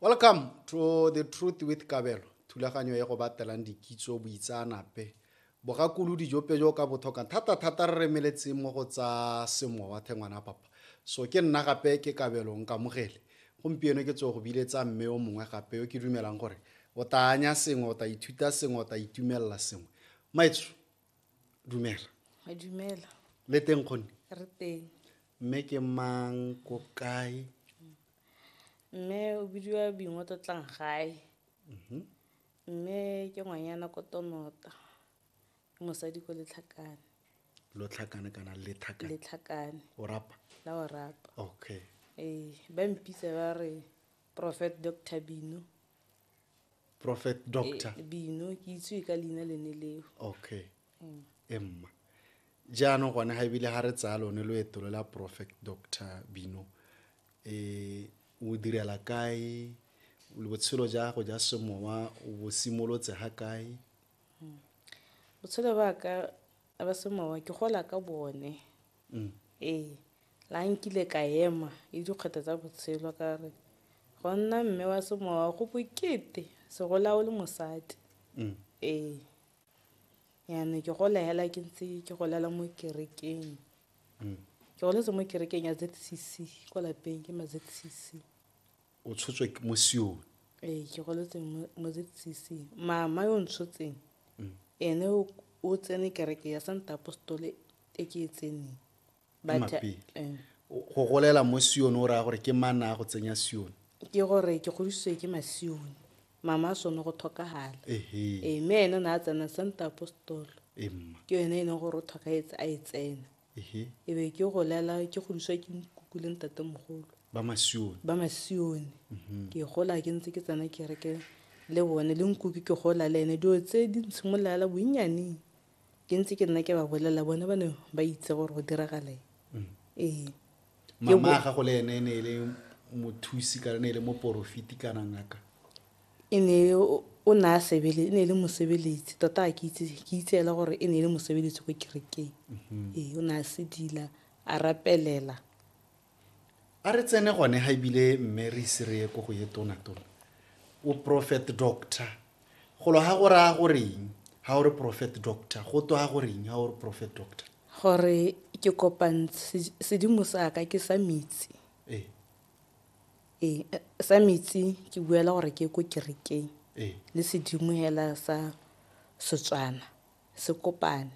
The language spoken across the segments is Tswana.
Welcome to the Truth with Kabelo, thulaganyo ya go batelang dikitso boitsaanape. Bogakulu dijope jo ka bothokang thata thata re remeletseng mo go tsa semowa thengwana papa. So ke nna gape ke Kabelo nkamogele. Gompieno ke tso go biletsa mme o mongwe gape yo ke dumelang gore o tla anya sengwe o tla ithuta sengwe o tla itumelela sengwe. Maitso dumela a dumela le teng kgonne re teng mme ke mang ko kae mme o bidiwa bingwe tlotlang gae mhm. mme ke ngwanyana ko tonota ke mosadi ko letlhakane lo tlhakane kana lethakane letlhakane o rapa la o rapa okay ee ba mpitsa ba re prophet doctor bino prophet doctor Eh, bino ke itsewe ka leina lene leo okay e mma jaanong gone ga ebile ga re tsaya lone loeto lo la prophet doctor bino um o direla kae le botshelo ja gago ja semowa o bo simolotse ga kae botshelo ba ka ba semowa ke gola ka bone mm. ee la nkile ka ema e dikgwetha tsa botshelo ka re go nna mme wa semowa go bokete segola o le mosadi mm. ee yana ke gola hela ke ntse ke golela mo kerekeng mm. ke goletse mo kerekeng ya zcc kwa lapeng ke ma zcc o tshotswe mo sione ee ke goletse mo zcc mama yo ntshotseng mm. ene o tsene kereke ya santa apostole e ke e tseneng eh. go golela mo sione o raya gore ke mana a go tsenya sione ke gore ke godisiwe ke masione mama a sone go tlhokagala ee mme ene o ne a tsena santa apostolo ke yone e leng gore o tlhokagetse a e tsena Ehe. e be ke golela ke godiswa ke nkuku le ntatemogolo ba masione ba masione mhm. ke gola ke ntse ke tsena kereke le bone le nkuku ke gola le ene dilo tse di ntshimololela bonnyaneng ke ntse ke nna ke ba bolelela bone ba ne ba itse gore go diragalang mm. ee mama gago le ene e ne e le mothusi kana ne e le moporofiti kana ngaka E ne o ne a sebele, e ne e le mosebeletsi tota a ke itse ke itse ela gore e ne e le mosebeletsi ko kerekeng. Mhm. Ee, o ne a sedila, a rapelela. A re tsene gone ga ebile mme re ise re ye ko go ye tonatona o prophet doctor golo ga go raya goreng ga o re prophet doctor go twa goreng ga o re prophet doctor gore ke kopantse sedimo sa ka ke sa metsi ee Ee, sa metsi ke buela gore ke ko kerekeng le sedimo hela sa Setswana se kopane.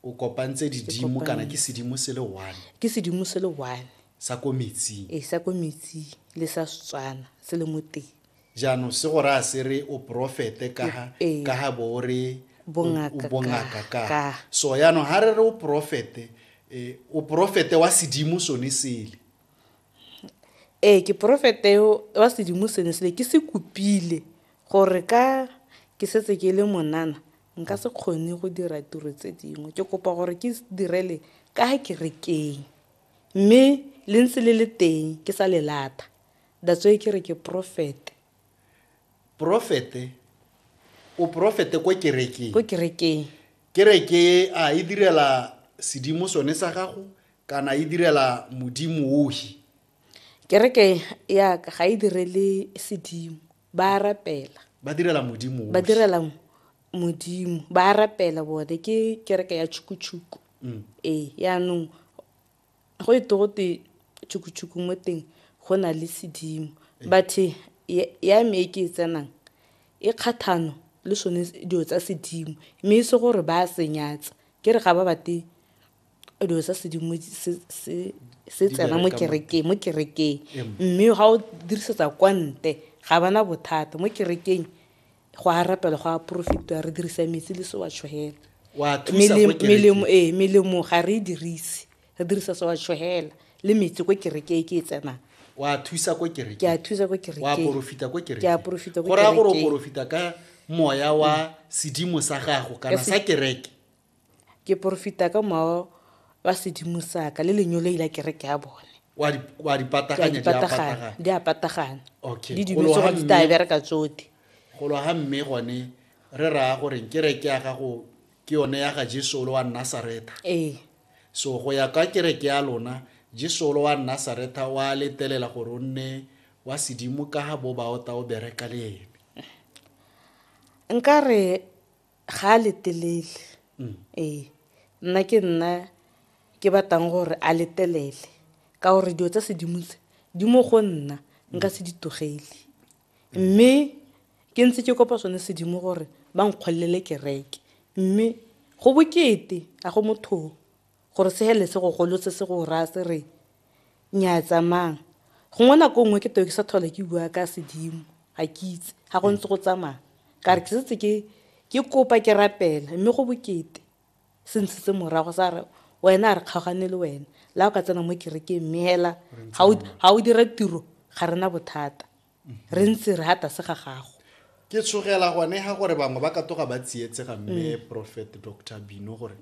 O kopantse didimo kana ke sedimo se le one? Ke sedimo se le one. Sa ko metsing? Ee, sa ko metsing le sa Setswana se le mo teng. Jaanong se go raya se re o porofete ka ga bo o re o bongaka ka. So jaanong ga re re o porofete, o porofete wa sedimo sone sele. Ee, ke profeta yo wa sedimo sene sele ke se kopile gore ka ke setse ke le monana nka se kgone go dira tiro tse dingwe ke kopa gore ke direle ka kerekeng mme le ntse le le teng ke sa le lata that's why ke re ke profete profete o profete ko kerekeng ko kerekeng kereke a e direla sedimo sone sa gago Kana e direla modimo ohi. Kereke ya ka ga e direle sedimo, ba a rapela. Ba direla modimo ohi. Ba direla modimo, ba a rapela bone, ke kereke ya tšhukutshuku. Mm. Ee, yaanong go e togote tšhukutshuku mo teng go na le sedimo. Bathe ya me e ke e tsenang e kgathano le sone dilo tsa sedimo, mme e se gore ba a senyatsa, ke re ga ba bate dilo tsa sedimo se tsena mo kerekeng mo kerekeng mme ga o dirisetsa kwa nte ga bana bothata mo kerekeng go a rapela go a porofetiwa re dirisa metsi le se wa tshogela melemo ee melemo ga re e dirise re dirisa se wa tshogela le metsi ko kerekeng ke e tsenang wa thusa ko kerekeng ke a thusa ko kerekeng wa porofita ko kerekeng ke a porofita ko kerekeng go raya gore o porofita ka moya wa sedimo sa gago kana sa kereke Ke porofita ka mowa wa sedimo sa ka le lenyoloi la kereke ya bone wa di wa di pataganya di a patagana di a patagana okay di dilo tsogo di tla bereka tsote go lo ga mme gone re ra gore ke re ke ya ga go ke yone ya ga Jesu lo wa Nazareth ee so go ya ka kereke ya lona Jesu lo wa Nazareth wa letelela gore o nne wa sedimo ka ga bo ba o ta o bereka le ene nka re ga a letelele ee nna ke nna ke batlang gore a letelele ka gore dilo tsa sedimo tse di mo go nna nka se di togele mme ke ntse ke kopa sone sedimo gore ba nkgolelele kereke mme go bokete a go mothong Gore se helele se go golotse se go raya se re, Nnyaya tsamaya. Gongwe nako nngwe ke teo ke sa tlhola ke bua ka sedimo, ga ke itse, ga go ntse go tsamaya. Ka re ke setse ke ke kopa ke rapela mme go bokete se ntshitse morago sa re wena a re kgaogane le wena la o ka tsena mo kerekeng mme hela ga o dira tiro ga rena bothata re ntse re ha tlase ga gago ke tshogela gone ga gore bangwe ba ka toga ba tsietsega mme mm. prophet dr bino gore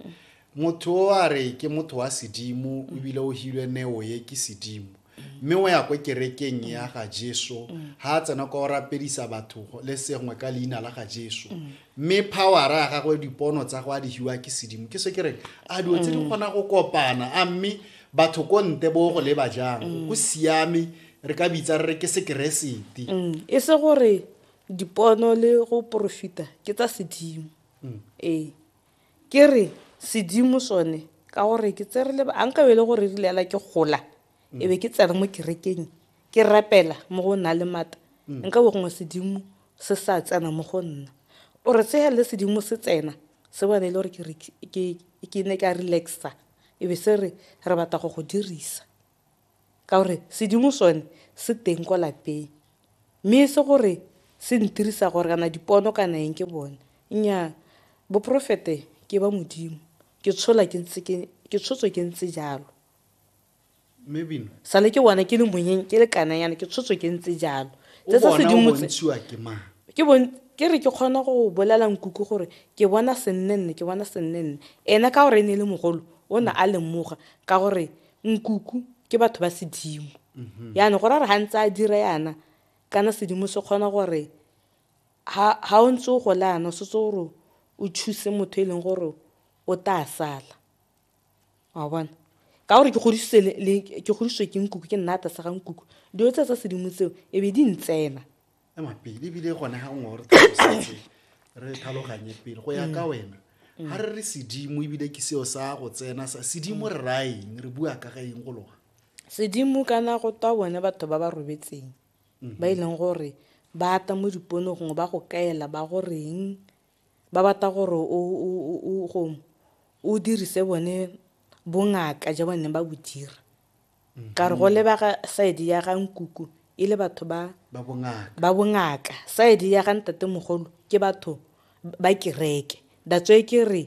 motho o a re ke motho wa sedimo mm. ebile o hilwe neo ye ke sedimo mm. mme o ya ko kerekeng ya ga jesu ga a tsena kwa o rapedisa batho le sengwe ka leina la ga jesu mme powera ya gagwe dipono tsa go a dihiwa ke sedimo ke se ke reng a dilo tse di kgona go kopana a mme batho ko nte bo go leba jang go siame re ka bitsa re re ke sekeresete mm, e se gore dipono le go porofita ke tsa sedimo mm. ee ke re sedimo sone ka gore ke tse re le a nka bele gore re lela ke gola mm. e be ke tsena mo kerekeng ke rapela mo go nna le mata mm. nka bo gongwe sedimo se sa tsena mo go nna o re tsega le sedimo se tsena se bone e le gore ke ne ka relaxa e be se re re batla go go dirisa Ka gore sedimo sone se teng kwa lapeng. Mme e se gore se ntirisa gore kana dipono kana eng ke bone. Nnyaa boporofete ke ba Modimo. Ke tshola ke ntse ke, ke tshotswe ke ntse jalo. Mme Bina. Sale ke bona ke le monyeng, ke le kananyana, ke tshotswe ke ntse jalo. O Tse tsa bona o sedimo tse. bontshiwa ke mang? Ke bon, ke re ke kgona go bolela nkuku gore ke bona sennenne, ke bona sennenne. Ene ka gore e ne e le mogolo, o ne a lemoga ka gore Nkuku ke batho ba sedimo. Yana go rara ha ntse a dira yana kana sedimo se kgona gore ha ha o ntse o gola yana o setse gore o choose motho e leng gore o tla sala. Wa bona? Ka gore ke godisitswe le- le ke godisitswe ke nkuku ke nna ata sa ga nkuku. Dilo tse tsa sedimo tseo e be di ntsena. ema pele ebile gone ga ngwe gore tlhalosetse re tlhaloganye pele go ya ka wena ga re re sedimo ebile ke seo sa go tsena sa sedimo re raya eng re bua ka ga eng go loga sedimo kana go twa bone batho ba ba robetseng ba e leng gore ba ata mo dipono gongwe ba go kaela ba goreng ba batla gore o dirise bone bongaka ja bone ba bo dira ka re go lebaka side ya ga nkuku e le batho ba ba bongaka side ya ga ntate mogolo ke batho ba kereke that's why ke re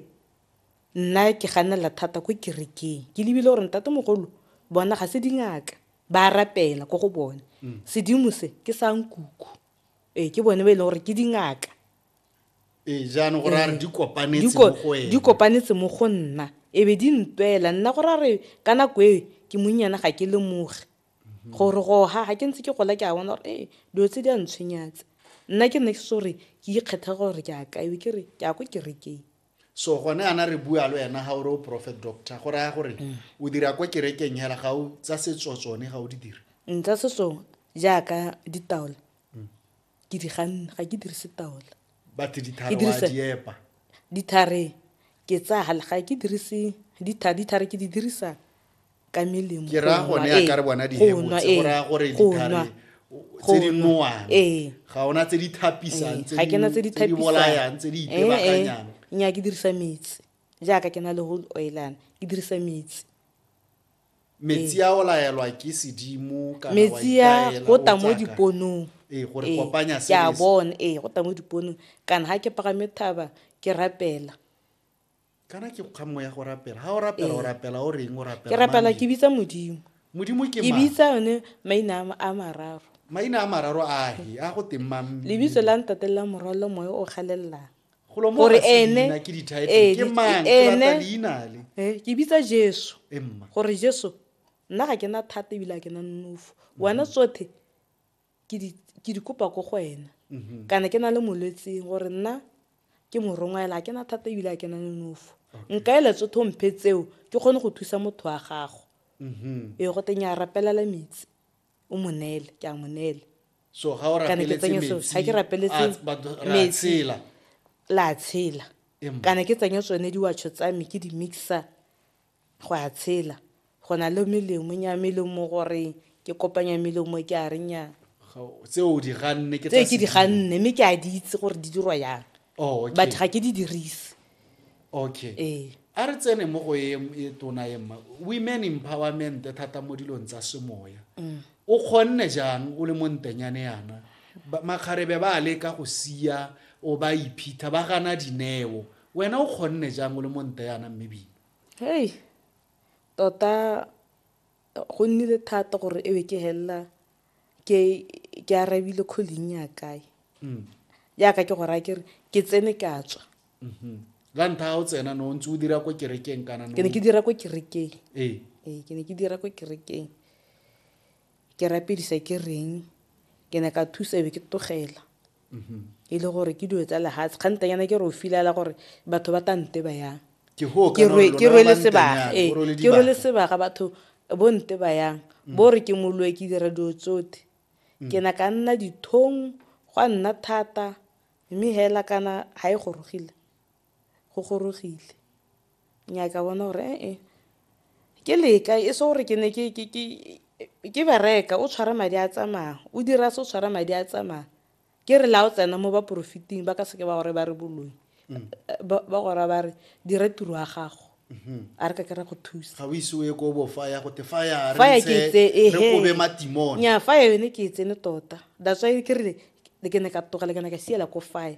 nna ke ganela thata ko kerekeng ke lebile gore ntate mogolo bona ga se dingaka ba rapela ko go bone mm. sedimo se ke sa nkuku ee ke bone ba e leng gore ke dingaka ee jaanong go raya re di kopanetse mo go ene di kopanetse mo go nna e be di ntwela nna go raya re ka nako e ke monnyana ga ke lemoge mhm. gore go ha ga ke ntse ke gola ke a bona gore ee dilo tse di a ntshwenyatse nna ke nne ke se gore ke ikgetha gore ke a kae ke re ke a ko kerekeng so gone ana re bua le wena ga ore o prophet doctor go raya gore mm. o dira kwa kerekeng hela ga o tsa setso tsone ga o di dira nka mm, setso jaaka ditaola mm. ke di ganna ga ke dirise taola bathe dithare wa di epa dithare ke tsaya ga ke dirise dithare dithare ke di dirisa ka melemo ke ra gone ya ka re bona di hebotse go ra gore dithare tse di nowang ga ona tse di thapisang tse di tse di tse di bolayang tse di itebakanyang nya ke dirisa metsi jaaka ke na le whole oilana ke dirisa metsi metsi a o laelwa ke sedimo kana metsi a go tla mo diponong ee gore ee, kopanya se ke a bona ee go tla mo diponong kana ga ke pagame thaba ke rapela kana ke kga moya go rapela ga o rapela o ee. rapela o reng o rapela ke rapela ke bitsa modimo modimo ke ke bitsa yone maina a mararo maina a mararo a he a go teng mang lebitso la ntate la morwalo moya o galelelang gore ene ke bitsa jesu gore jesu nna ga ke na thata ebile a ke na nonofo mhm. wena tsothe ke di kopa ko go wena mhm. kana ke na le molwetseng gore nna ke morongwa ela a ke na thata ebile a ke na nonofo nka ele tsothe o mphe tseo ke kgone go thusa motho wa gago mhm. ee go teng ya rapelela metsi o mo neele ke a mo neele so ga o kana ke tsenye so ga ke rapeletse metsi la tshela kana ke tsenye tsone diwatsho tsa me ke di mixa go a tshela go na le melemo nya melemo gore ke kopanya melemo ke a renya tse o di ganne ke tse ke di ganne mme ke a di itse gore di dirwa yang oh, batho ga ke di dirise okay ee a re tsene mo go e e tona e mma women empowerment thata mo dilong tsa semoya mm. o kgonne jang o le mo ntenyane yana makgarebe ba leka go sia o ba iphitha ba gana dineo wena o kgonne jang o le mo nte yana mme bina hei tota go nnile thata gore e be ke helela ke ke arabile calling ya kae mm. yaka ke go raya kere ke tsene ke a tswa mm-hmm. la ntlha ga o tsena no ntse o dira ko kerekeng kana ke ne ke dira ko kerekeng ee ee ke ne ke dira ko kerekeng ke rapedisa ke reng ke ne ka thusa be ke togela e le gore ke dilo tsa lehatshe kgantanyana ke re o filala gore batho ba tante ba yang ke rwele sebaga ee ke rwele sebaga batho bo nte ba yang mm. bo re ke moloe ke dira dilo tsote mm. ke na ka nna dithong gwa nna thata mme hela kana ga e gorogile go gorogile. Nnyaa ka bona gore e-e, ke leka e se gore ke ne ke bereka o tshwara madi a tsamaya, o dira se o tshwara madi a tsamaya. Ke re la o tsena mo ba porofiteng ba ka seke ba gore ba re boloi, ba go raya ba re dira tiro ya gago. A re ka ke ra go thusa. Ga o ise o ye ko bo faya go te faya re ntshe re kobe matimone. Nnyaa faya yone ke e tsene tota, that's why ke re ke ne ka tlogela ke ne ka siela ko faya.